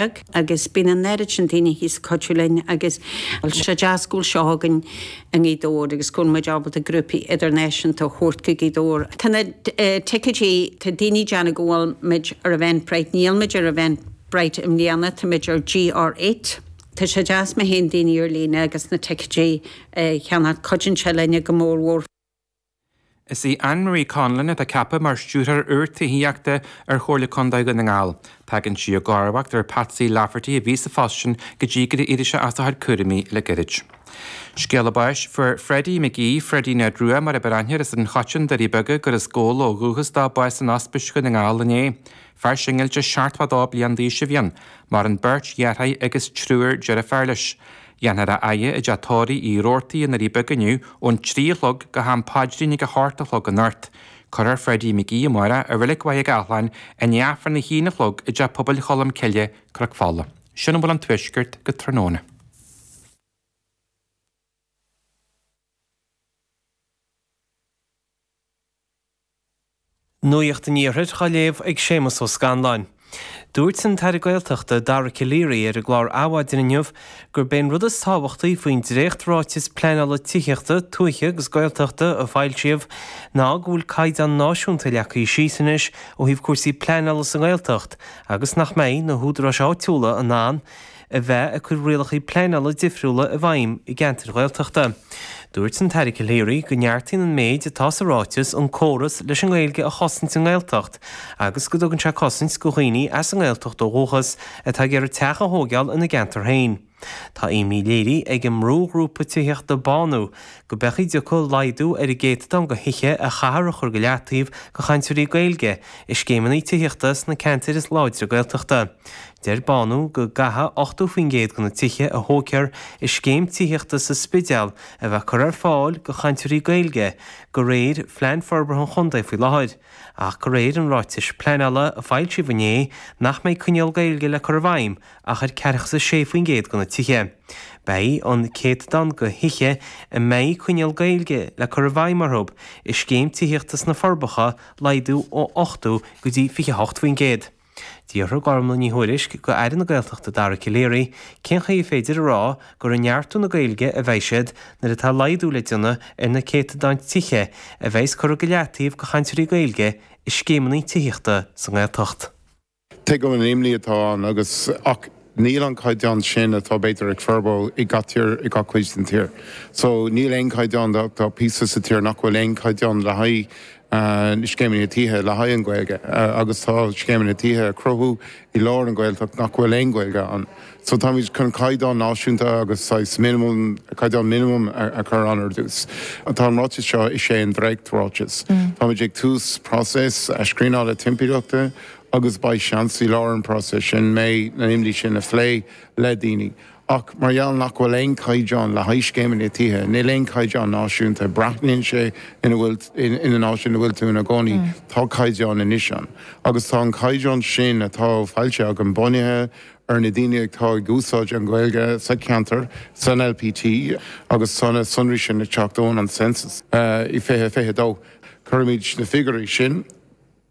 agus bíonn an oiread sin daoine thíos ag cuidiú linn agus tá sé deas go bhfuil seo againn i nGaoth Dobhair agus go bhfuil muid ábalta grúpaí idirnáisiúnta a thabhairt go Gaoth Dobhair. Tá na ticéidí, tá daoine ag déanamh go bhfuil muid ar Eventbrite, níl muid ar Eventbrite i mbliana, tá muid ar GR Eight. Tá sé deas má théann daoine ar líne agus na ticéidí a cheannach, cuidíonn sé linne go mór mhór. Is í Anne Marie Conlon atá ceaptha mar Stiúrthóir úr Tithíochta ar Chomhairle Contae Dhún na nGall. Tagann sí i gcomharbacht ar Patsy Lafferty a bhí sa phost sin go dtí gur éirigh sé as a chuid cúraimí le gairid. Scéala báis fuair Freddie McGee, Freddie Ned Rua mar ab fhearr aithne air as an Choiteann Doirí Beaga, gur as Gabhla ó dhúchas dó, bás in Ospís Dhún na nGall inné. Fear singilte 72 bliain d'aois a bhí ann, maireann beirt dheartháir agus triúr deirfiúr leis. Dhéanfar a fhaire i dTeach Tórraimh Uí Rabhartaigh i nDoirí Beaga inniu ón trí a chlog go ham paidrín ag a hocht a chlog anocht. Cuirfear Freddie McGee amárach i Reilig Mhachaire Gathláin i ndiaidh Aifreann a haon a chlog i dTeach Pobail Cholm Cille, Cnoc Fola. Sin a bhfuil ón Tuaisceart go tráthnóna. Nuacht an Iarthair á léamh ag Séamus Ó Scanláin. Dúirt an tAire Gaeltachta Dara Calleary ar an gclár Adhmhaidin inniu gurb é an rud is tábhachtaí faoin dréacht-Ráiteas Pleanála Tithíochta, Tuaithe agus Gaeltachta a foilsíodh ná go bhfuil caighdeán náisiúnta leagtha síos anois ó thaobh cúrsaí pleanála sa nGaeltacht agus nach mbeidh na húdaráis áitiúla in ann a bheith ag cur rialacha pleanála difriúla i bhfeidhm i gceantair Ghaeltachta. Dúirt an tAire Calleary go neartaíonn an méid atá sa ráiteas an córas leis an nGaeilge a chosaint i nGaeltacht agus go dtugann sé cosaint go dhaoine as an nGaeltacht ó dhúchas atá ag iarraidh teach a thógáil ina gceantar féin. Tá imní léirithe ag an mbrúghrúpa tithíochta Bánú go mbeadh go dtiocfadh laghdú ar an gcéatadán de thithe a chaithfear a chur go leataobh do chainteoirí Gaeilge i scéimeanna tithíochta sna ceantair is láidre Gaeltachta. Deir Bánú go gcaithfidh 80% de na tithe a thógtar i scéim tithíochta sa Spidéal a bheith curtha ar fáil go chainteoirí Gaeilge go réir Phlean Forbartha an Chontae faoi láthair, ach go réir an ráitis pleanála a foilsíodh inné nach mbeidh coinníoll Gaeilge le cur i bhfeidhm ach ar 46% de na tithe. Beidh an céatadán de thithe a mbeidh coinníoll Gaeilge le cur i bhfeidhm orthu i scéim tithíochta sna Forbacha ag laghdú ó 80 go dtí 28%. D'fhiafraigh Gormfhlaith Ní Thuairisg d'Aire na Gaeltachta Dara Calleary cén chaoi ar féidir a rá gur ag neartú na Gaeilge a bheidh siad nuair atá laghdú le déanamh ar na céatadáin tithe a bheidhs curtha go leataobh go chainteoirí Gaeilge i scéimeanna tithíochta sa nGaeltacht. Tuigim an imní atá ann agus ach Níl an caighdeán sin atá b'fhéidir ag Furbo i gach tír i gach cuid den tír. So níl aon caighdeán de, tá píosa sa tír nach bhfuil aon caighdeán le haghaidh na scéimeanna tithe le haghaidh an Ghaeilge agus tá scéimeanna tithe á cruthú i lár an Ghaeltacht nach bhfuil aon Ghaeilge ann. So táimid chun caighdeán náisiúnta agus saghas minimum, caighdeán minimum a chur ann ar dtús. Tá an ráiteas seo, is é an dréacht ráiteas. Táimid ag tús próiseas scríneála timpeallachta agus beidh seans i lár an próiseas sin na imní sin a phlé le daoine ach mar gheall nach bhfuil aon caighdeán le haghaidh scéimeanna tithe, níl aon caighdeán náisiúnta, braitheann sé ina bhfuil, ina n-áit ina bhfuil tú ina gcónaí, tá caighdeán anois ann agus tá an caighdeán sin atá foilsithe agam bunaithe ar na daoine atá ag úsáid an Ghaeilge sa cheantar, san LPT agus tá na sonraí sin ag teacht ón an Census i 2022. Cuirfimid na figiúirí sin.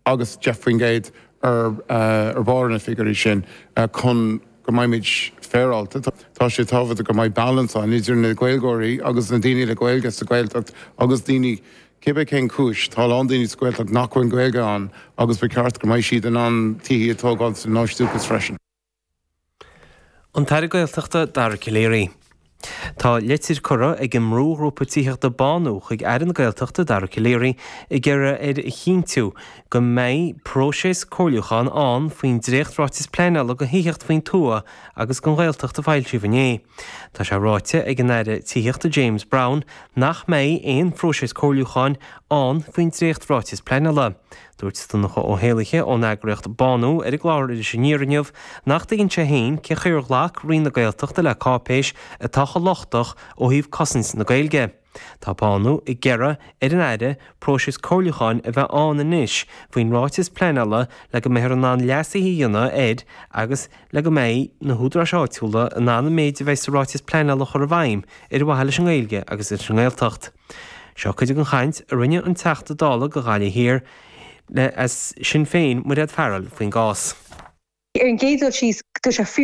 agus 10% ar barr na figiúirí sin chun go mbeimid féaráilte. Tá sé tábhachtach go mbeidh balance ann idir na Gaeilgeoirí agus na daoine le Gaeilge sa Ghaeltacht agus daoine, cibé cén chúis, tá a lán daoine sa Ghaeltacht nach bhfuil Gaeilge ann agus ba cheart go mbeidh siad in ann tithe a tógáil ina n-áit dúchais freisin. An tAire Gaeltachta Dara Calleary. Tá litir curtha ag an mbrúghrúpa tithíochta Bánú chuig Aire na Gaeltachta Dara Calleary ag iarraidh air a chinntiú go mbeidh próiseas comhairliúcháin ann faoin dréachtráiteas pleanála do thithíocht faoin tuath agus don Ghaeltacht a foilsíodh inné. Tá sé ráite ag an Aire Tithíochta James Browne nach mbeidh aon phróiseas comhairliúcháin ann faoin dréachtráiteas pleanála. Dúirt Donncha Ó hÉallaithe ón eagraíocht Bánú ar an gclár Iris Aniar inniu nach dtuigeann sé féin cé chaoi ar ghlac Roinn na Gaeltachta le cáipéis atá chomh lochtach ó thaobh cosaint na Gaeilge. Tá Bánú ag iarraidh ar an Aire próiseas comhairliúcháin a bheith ann anois faoin ráiteas pleanála le go mbeifear in ann leasuithe a dhéanamh air agus, le go mbeidh na húdaráis áitiúla in ann an méid a bheidh sa Ráiteas Pleanála a chur i bhfeidhm ar mhaithe leis an nGaeilge agus leis an nGaeltacht. Seo cuid den chaint a rinne an Teachta Dála do Ghaillimh Thiar le Sinn Féin, Mairéad Farrell, faoin gcás. Ar an gcéad dul síos, tá sé fíor.